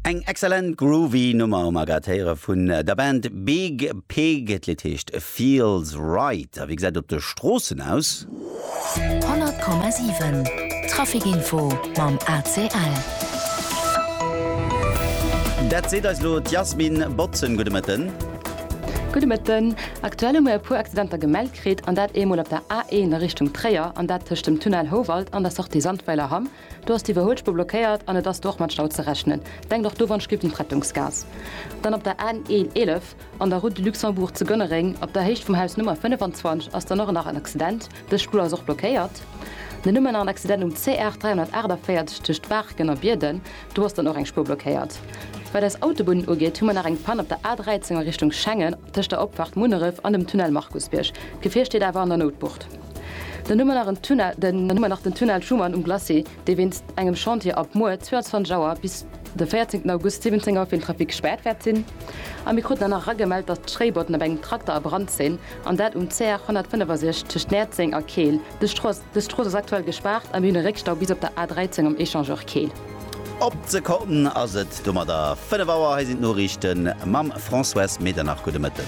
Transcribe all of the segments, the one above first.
Eng excellent groovy Nummer mat grad héiere vun der Band Big Pig. D'Lidd heescht Feels Right. A wéi gesäit et op de Stroossen aus? 100,7 Traficinfo mam ACL. Dat seet eis elo d'Yasmin Botzen. Gudde Mëtten. Gudde Mëtten. Aktuell hu mir e puer Accidenter gemellt kritt, an dat eemol op der A1 a Richtung Tréier, an dat tëscht dem Tunnel Houwald an der Sortie Sandweiler Hamm, Do ass d'Iwwerhuelspur blockéiert an et ass do och mat Stau ze rechnen. Denkt och do wann Schlipp un d'Rettungsgaass. Dann op der N 11 an der Route de Luxembourg zu Gönnereng op der Héicht vum Haus Nummer 25 ass dann och nach en Accident. Dës Spur ass och blockéiert. Dann hu mer nach en Accident um CR 348 tëscht Baarken a Bierden. Do ass dann och eng Spur blockéiert. Wat eis Autobunnen ugeet hu mer nach eng Pann op der A 13 a Richtung Schengen tëscht der Opfahrt Munneref an dem Tunnel Markusbierg. D'Gefier steet awer an der Noutbucht. Den Numm ënnert den Numm ënnert den Tunnel Schuman um Glacis, dee wéinst engem Chantier ab muer 22 Auer bis de 14 August 17 Auer fir den Trafic gespaart wäert sinn. A mir kruten dann nach eragemellt, datt d'Schréibotten op engem Trakter a Brand sinn, an dat um CR 165 tëscht Näerzeng a Keel. Dës Strooss ass aktuell gespaart a mir hunn e Réckstau bis op der A 13 um Echangeur Keel. Op d'Sekonn ass et domadder 5 Auer. Hei sinn d'Noriichten mam Françoise Medernach. Gudde Mëtten.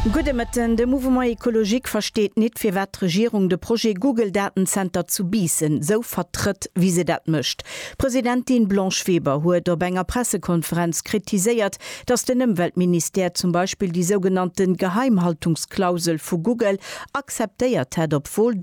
Gudde Mëtten. De Mouvement Ecologique versteet nit, firwat d'Regierung de Projet Google-Datenzenter zu Biissen esou vertrëtt, wéi se dat mécht. D'Presidentin Blanche Weber huet op enger Pressekonferenz kritiséiert, datt den Ëmweltministère zum Beispill déi sougenannte Geheimhaltungsklausel vu Google akzeptéiert hätt, obwuel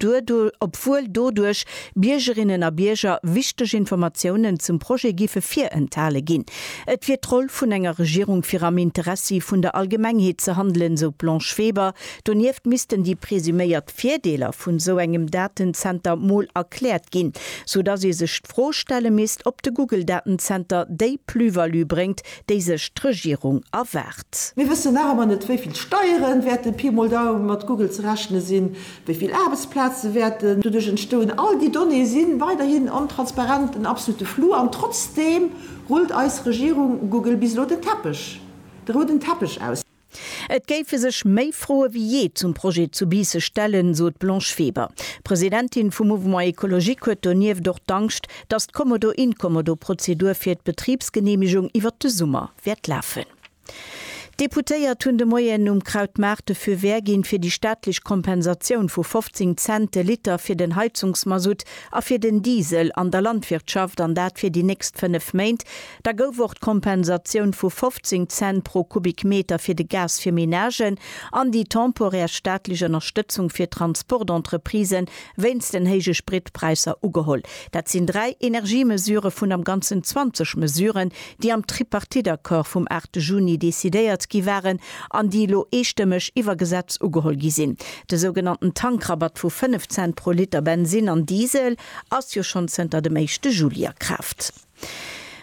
doduerch Biergerinnen a Bierger wichteg Informatiounen zum Projet géife virenthale ginn. Et wier d'Roll vun enger Regierung fir am Interessi vun der Allgemengheet ze handelen, sou d'Blanche Weber. Donieft missten déi presuméiert Virdeeler vun esou engem Datenzenter mol erkläert ginn, sou datt ee sech d'Fro stelle misst, ob de Google-Datenzenter déi Plus-value bréngt, déi sech d'Regierung erwaart. Mir wëssen nach ëmmer net, wéi vill Steieren wäerten Pi mol Daum mat Google ze rechne sinn. Wéi vill Aarbechtsplaze wäerten doduerch entstoen? All déi Donnéeë si weiderhin ontransparent, en absolute Flou. An trotzdeem rullt eis Regierung Google bis elo den Teppech, de rouden Teppech aus. Et géife sech méi Froe wéi jee zum Projet zu Biisse stellen, sot d'Blanche Weber. D'Presidentin vum Mouvement Ecologique huet donieft och d'Angscht, datt d'Commodo-Incommodo-Prozedur fir d'Betribsgeneemegung iwwert de Summer wäert lafen. D'Deputéiert hunn de Moien um Krautmaart de Feu vert ginn, fir déi staatlech Kompensatioun vu 15 Cent de Liter fir den Heizungsmasutt a fir den Diesel an der Landwirtschaft, an dat fir déi nächst fënnef Méint. Da gouf och d'Kompensatioun vu 15 Cent pro Kubikmeter fir de Gas fir Menagen an déi temporär staatlech Ënnerstëtzung fir d'Transportentreprisë wéinst den héije Spritpräisser ugeholl. Dat sinn dräi Energiemesure vun am Ganzen 20 Mesuren, déi am Tripartite-Accord vum 8 Juni decidéiert gi waren an déi elo eestëmmeg iwwer Gesetz ugeholl gi sinn. De sougenannten Tankrabatt vu 5 Cent pro Liter Bensin an Diesel ass jo schonn zënter dem éischte Juli a Kraaft.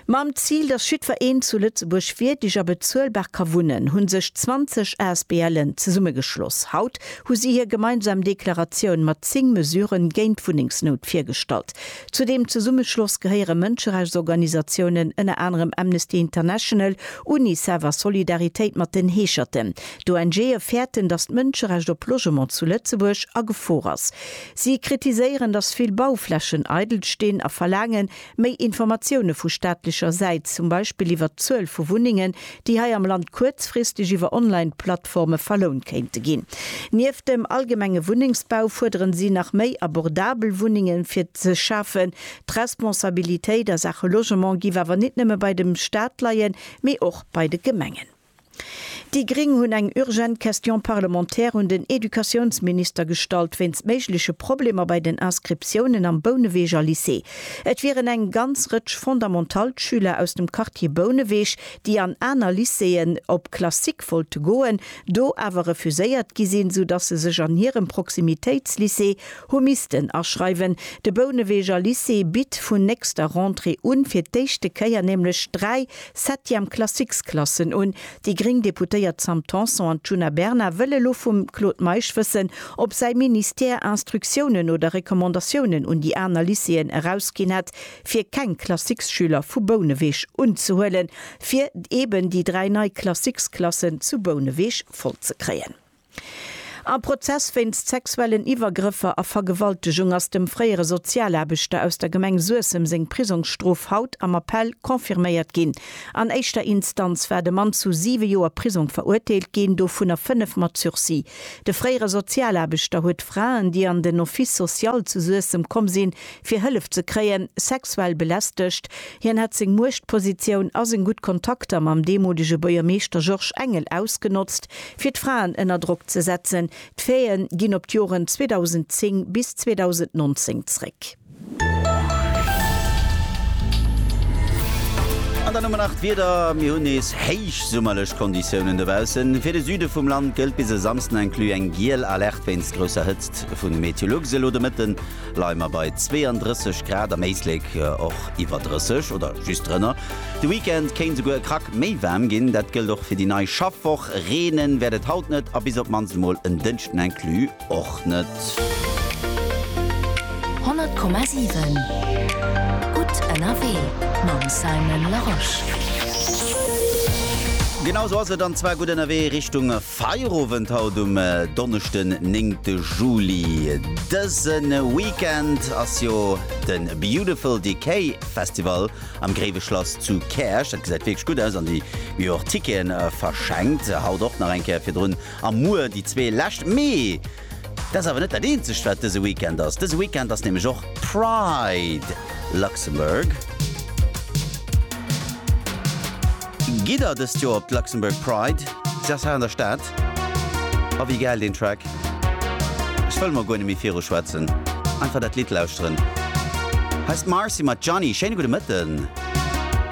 Mam Zil, datt jiddwer een zu Lëtzebuerg wierdeg a bezuelbar ka wunnen, hu sech 20 ASBLen zesummegeschloss. Haut hu si hir gemeinsam Deklaratioun mat 10 Mesuren géint d'Wunnengsnout virgestallt. Zu deem Zesummeschloss gehéiere Mënscherechtsorganisatiounen, ënner anerem Amnesty International, Unicef a Solidaritéit mat den Heescherten. D'ONGe fäerten, datt d'Mënscherecht op Logement zu Lëtzebuerg a Gefor ass. Si kritiséieren, datt vill Bauflächen eidel stinn a verlaangen, méi Informatioune vu staatlecher Säit, zum Beispill iwwert d'Zuel vu Wunnengen, déi hei am Land kuerzfristeg iwwer Online-Plattforme verlount kéinte ginn. Nieft dem allgemenge Wunnengsbau fuerderen si nach méi abordabel Wunnenge fir ze schafen. D'Responsabilitéit a Saache Logement giff awer nit nëmme bei dem Staat leien, mee och bei de Gemengen. Déi Gring hunn eng urgent Question parlementaire un den Educatiounsminister gestallt wéinst méigleche Problemer bei den Inscriptiounen am Bouneweger Lycée. Et wieren eng ganz Rëtsch Fondamentalschüler aus dem Quartier Bouneweg, déi an aner Lycéeën op Classique wollte goen, do awer refuséiert gi sinn, sou dass se sech an hirem Proximitéitslycée hu missten aschreiwen. De Bouneweger Lycée bitt vun nächster Rentrée un fir d'éischte Kéier nämlech dräi Septième Classiques-Klassen un. Déi gréng Deputéiert Sam Tanson an d'Djuna Bernard wëlle lo vum Claude Meisch wëssen, ob säi Ministère Instruktiounen oder Recommandatiounen un déi aner Lycéeën erausginn hätt, fir keng Classiques-Schüler vu Bouneweg unzehuelen, fir eben déi dräi nei Classiques-Klassen zu Bouneweg voll ze kréien. Am Prozess wéinst sexuellen Iwwergrëffer a Vergewaltegung ass dem fréiere Sozialaarbechter aus der Gemeng Suessem seng Prisongsstrof haut am Appell confirméiert ginn. An éischter Instanz war de Mann zu siwe Joer Prisong verurteelt ginn, dovunner fënnef mat Sursis. De fréiere Sozialaarbechter huet Fraen, déi an den Office social zu Suessem komm sinn, fir Hëllef ze kréien, sexuell belästegt. Hien hätt seng Muechtpositioun a seng gutt Kontakter mam deemolege Buergermeeschter Georges Engel ausgenotzt, Fir d'Fraen ënner Drock ze setzen, d'Faite ginn op d'Joren 2010 bis 2019 zréck. An dann hu mer nach d'Wieder, Mir hunn nees héichsummerlech Konditiounen dobaussen. Fir de Süde vum Land gëllt bis e Samsden inclus eng giel Alerte wéinst grousser Hëtzt. Vu Meteolux elo de Mëtten. leie mer bei 32 Grad, am Éislek och iwwer 30 oder just drënner. De Weekend kéint souguer e Krack méi waarm ginn, dat gëllt och fir déi nei Schaffwoch. Reenen wäert et haut net a bis op d'mannst emol en Dënschden inclus och net. 100,7 gutt ënnerwee mam Simon Larosche. Genau sou ass et, an zwar gutt ënnerwee Richtung. Feierowend haut um Donneschden 9 Juli. Dëse Weekend ass jo de Beautiful Decay Festival am Gréiwe Schlass zu Käerch. Dat gesäit wierklech gutt aus an déi hu jo och Ticketen verschenkt. Haut och nach eng Kéier virdrun a muer déi zwee lescht. Mee! Dat ass awer net dat eenzegt wat dëse Weekend ass. Dëse Weekend ass nämlech och Pride Luxembourg. Gitt der dëst Joer op d'Luxembourg Pride? Se ass hei an der Stad. A wéi gäil deen Track. Ech wëll mol guer net méi viru schwätzen. Einfach dat Lidd lauschteren. Hei ass d'Marcy mat Johnny. Schéine gudde Mëtten.